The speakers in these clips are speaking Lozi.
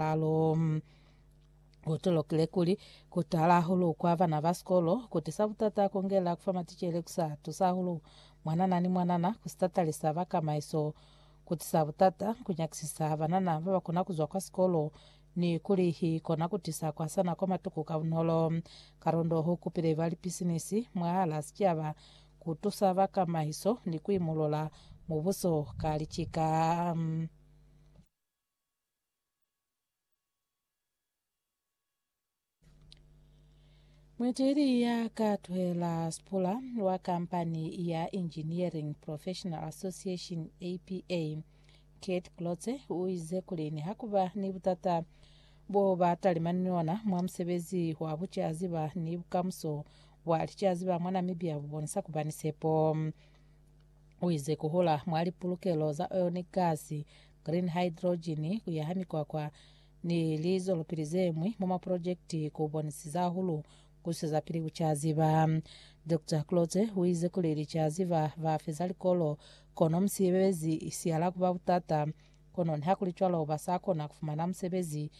Calo, ku tolokile kuli ku tala hahulu kwa bana ba sikolo ku tisa butata kongela ku fa maticele ku sa tusa hahulu mwanana ni mwanana ku sitatalisa ba kamaiso, ku tisa butata ku nyakisisa banana ba ba kona ku zwa kwa sikolo ni kuli hi kona ku tisa ku hasana kwa matuku ka bunolo. Karondo u kupile ba lipisinisi mwahala sicaba ku tusa ba kamaiso ni ku imolola mubuso ka licika. Mueteli ya ka tuhela Sipula wa kampani ya Engineering Professional Association APA, Kate Klotze o ize kuli niha ku ba ni butata bo ba talimani ni ona mwa musebezi wa bucaziba ni bukamuso bwa licaziba mwa Namibia bu bonisa ku ba ni sepo. Uize kuhula mwa lipulukelo za ionic gas, green hydrogen, kuyaha mikwakwa ni lizwelopili zemwi mwa maprojekiti kubonisiza hahulu kuswezapili kucaziba. Doctor Klotze uize kuli licaziba bafeza likolo, kono musebezi sihala kuba butata. Kono nihakulicwalo basakona kufumana musebezi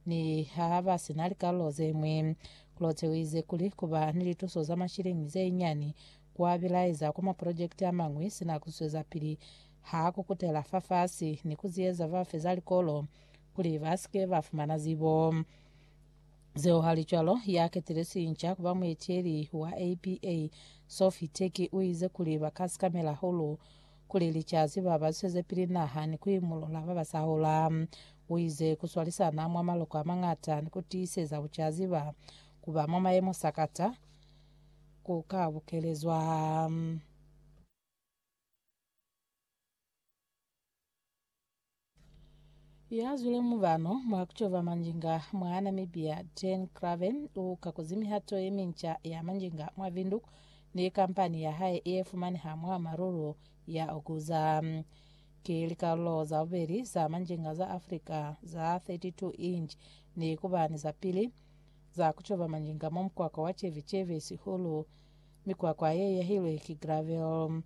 niha basina likalolo zemwi. Klotze uize kuli kuba ni lituso za mashilingi zeinyiani Ku abilaeza kwa maprojekiti amañwi sina ku zwezapili ha ku kutela fafasi ni ku ziyeza ba feza likolo kuli ba si ke ba fumana zibo zeo. Halicwalo, ya ketile sinca ku ba mueteli wa APA, Sophie Turkey, u ize kuli ba ka sikamela hahulu kuli licasi ba ba zwezepili naha ni ku imulula ba ba sa hola. U ize, Ku swalisana mwa maloko a mañata ni ku tiiseza bucaziba ku ba mwa mayemo sakata ku ka bukelezwa. Ya zwile mubano mwa ku cova manjinga mwa Namibia, Jane Craven, u kakuzi mihato ye minca ya manjinga mwa Windhoek ni kampani ya hae ye fumaneha mwa Maruru ya Okuza. Ki likalulo za bubeli za manjinga za Africa za 32 inch ni ku ba ni za pili, za ku coba manjinga mwa mukwakwa wa ceveceve sihulu. Mikwakwa ye yahilwe ki gravel.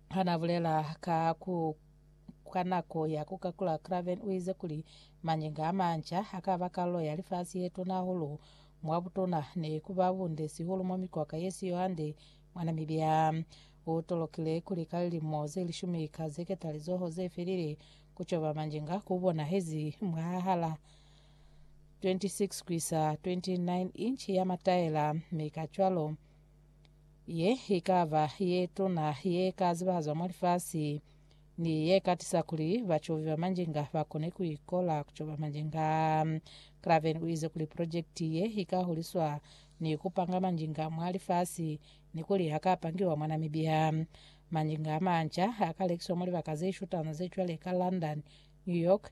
Ha n'a bulela ka ku kwa nako ya ku kakula Craven u ize kuli manjinga a manca a ka ba kalulo ya lifasi ye tuna hahulu mwa butuna ne ku ba bunde sihulu mwa mikwakwa ye si yo hande mwa Namibia. U tolokile kuli ka lilimo ze lishumi ka zeketalizoho ze felile, ku coba manjinga ku bonahezi mwahal'a 26-29 inchi ya mataela, mi kacwalo ye ikaba ye tuna ye ka zibahazwa mwa lifasi, ni ye ka tisa kuli bacobi ba manjinga ba kone ku ikola ku coba manjinga. Craven u ize kuli projekiti ye ika huliswa ni ku panga manjinga mwa lifasi ni kuli ha ka pangiwa mwa Namibia. Manjinga a manca a ka lekiswa mwa libaka ze shutana ze cwale ka London, New York,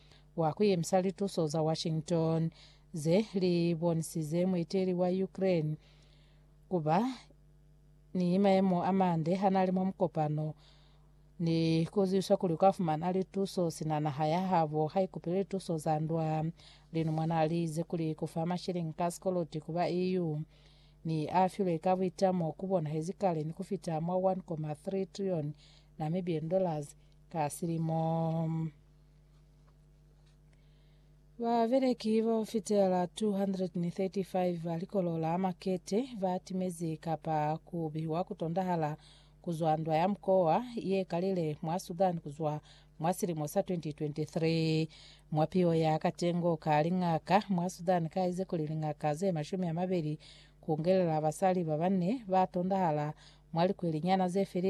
wa ku yemisa lituso za Washington ze li bonisize muiteli wa Ukraine ku ba ni mayemo a mande ha na li mwa mukopano ni ku ziwiswa kuli u ka fumana lituso sina naha ya habo ha ikupile lituso za ndwa. Linumwa na li ize kuli ku fa mashilingi ka sikoloti ku ba EU ni a filwe ka buitamo ku bonahezi kale ni ku fita mwa 1.3 trilioni Namibian dollars ka silimo. Babeleki ba fitela 235 ba likolo la Makete ba timezi kapa ku bihiwa ku tondahala ku zwa ndwa ya mukowa ye kalile mwa Sudan ku zwa mwa silimo sa 2023. Mwa piyo ya katengo ka lingaka mwa Sudan ka ize kuli lingaka ze mashumi a mabeli ku ngelela basali ba banne ba tondahala mwa likweli nyana ze felile.